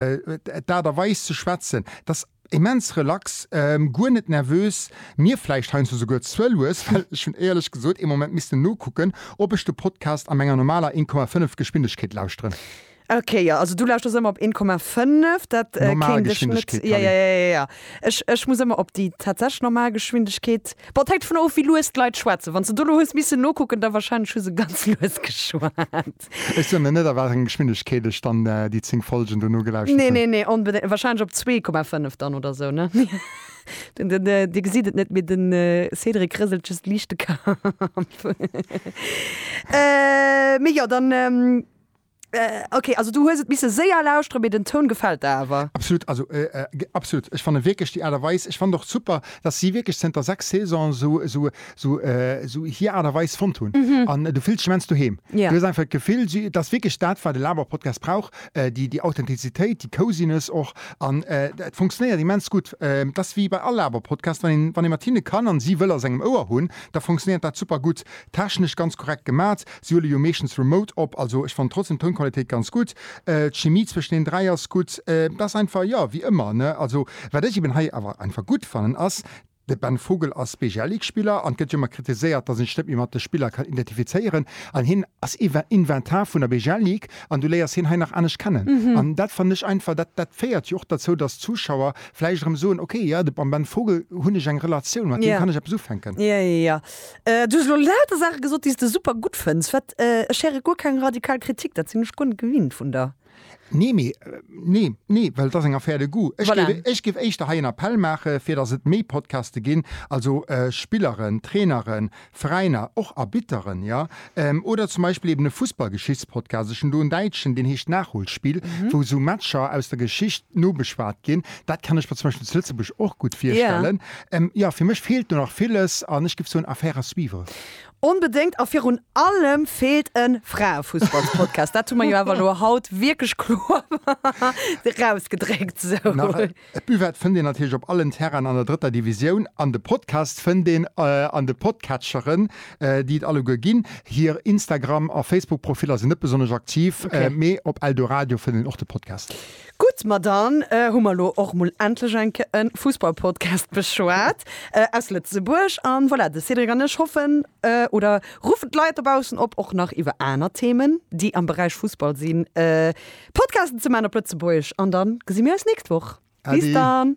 D'Aart a Weis ze schwätzen, et ass immens relax, guer net nervös. Mir vläicht heiansdo souguer ze lues, well ech hunn éierlech gesot ee Moment missten nokucken, ob ech de Podcast a menger normaler 1,5 Geschwindegkeet lauschteren. Ok, jo, also du lauschers ëmmer op 1,5, dat kéint ech net. Jo, jo, jo, ech, ech muss ëmmer op déi tatsächlech normal Geschwindegkeet. Bon, et hänkt dovun of, wéi lues d'Leit schwätzen. Wann s de do elo hues missen nokucken, da warscheinlech hu se ganz lues geschwat. Ech soen net a wat enger Geschwindegkeet ech dann déi 10 Folgen dono gelauschtert hunn. Nee, nee, nee, wahrscheinlech op 2,5 dann oder sou, ne? Dir gesitt et net, mee de Cédric rëselt just liicht de Kapp. Mee jo, dann. Ok, also du hues et misse séier lauschteren, mee den Toun gefält der awer? Absolut, also absolut. Ech fanne wierklech déi Aart a Weis, ech fannen och super, dass si wierklech zënter 6 Saisone sou sou hier Art a Weis fonnt hunn an du fills dech immens doheem. Du hues einfach d'Gefill, et ass wierklech dat, wat e Laber-Podcast brauch, déi, déi Authentizitéit, déi Cosiness och an et funktionéiert immens gutt. Et ass wéi bei all Laber-Podcast, wann een, wann ee mat hinne kann an si wëll a sengem Ouer hunn, da funktionéiert dat super gutt. Technesch ganz korrekt gemat, si huele jo meeschtens remote op, also ech fannen trotzdem d'Tounqualitéit ganz gutt. D'Chimie zwëschen den dräi ass gutt. Et ass einfach, jo, wéi ëmmer, ne? Also wat ech eben hei awer einfach gutt fannen ass, De Ben Vogel ass Beegialeague-Spiller an et gëtt jo ëmmer kritiséiert, datt een sech net méi mat de Spiller kann identifizéieren. An hien ass Inven Inventar vun der Beegialeague an du léiers hien hei nach anescht kennen. An dat fannen ech einfach, dat dat féiert jo och derzou, datt d'Zuschauer vläicht erëm soen, okay, jo, de mam Ben Vogel hunn ech eng Relatioun, mat deem Ja. kann ech eppes ufänken. Ja, ja, ja. Du hues elo lauter Saache gesot, déi s de super gutt fënns. Wat, ech héiere guer keng radikal Kritik, dat sinn ech guer net gewinnt vun der. Nee, mee, nee, nee, well et ass eng Affaire de goût. Ech Voilà. géif, ech géif éischter hei en Appell maache fir datt et méi Podcaste ginn, also äh, Spilleren, Traineren, Veräiner, och Arbitteren, jo, ähm, oder zum Beispill eben e Fussballgeschichtspodcast. Ech hunn do en däitschen, deen heescht Nachholspiel, wou esou Matcher aus der Geschicht nobeschwat ginn. Dat kann ech mer zum Beispill zu Lëtzebuerg och gutt virstellen. Ähm, jo, fir mech feelt do nach villes an ech géif soen, Affaire à suivre. Onbedéngt a virun allem feelt en Fraefussballspodcast. Dat hu mer jo awer elo haut wierklech kloer erausgedréckt. Sou. D'Buvette fënnt een natierlech op allen Terrainen an der drëtter Divisioun an de Podcast fënnt een an de Podcatcheren, déi et alleguer ginn. Hir Instagram a Facebook-Profiller sinn net besonnesch aktiv, mee op Eldoradio fënnt een och de Podcast. Gutt, ma dann hu mer elo och mol endlech eng Kéier e Fussballpodcast beschwat aus Lëtzebuerg. A voilà, de Cédric an ech hoffen oder ruffen d'Leit dobaussen op, och nach iwwer aner Themen, déi am Beräich Fussball sinn, Podcasten ze maachen op Lëtzebuergesch. An da gesi mir eis d'nächst Woch. Bis dann!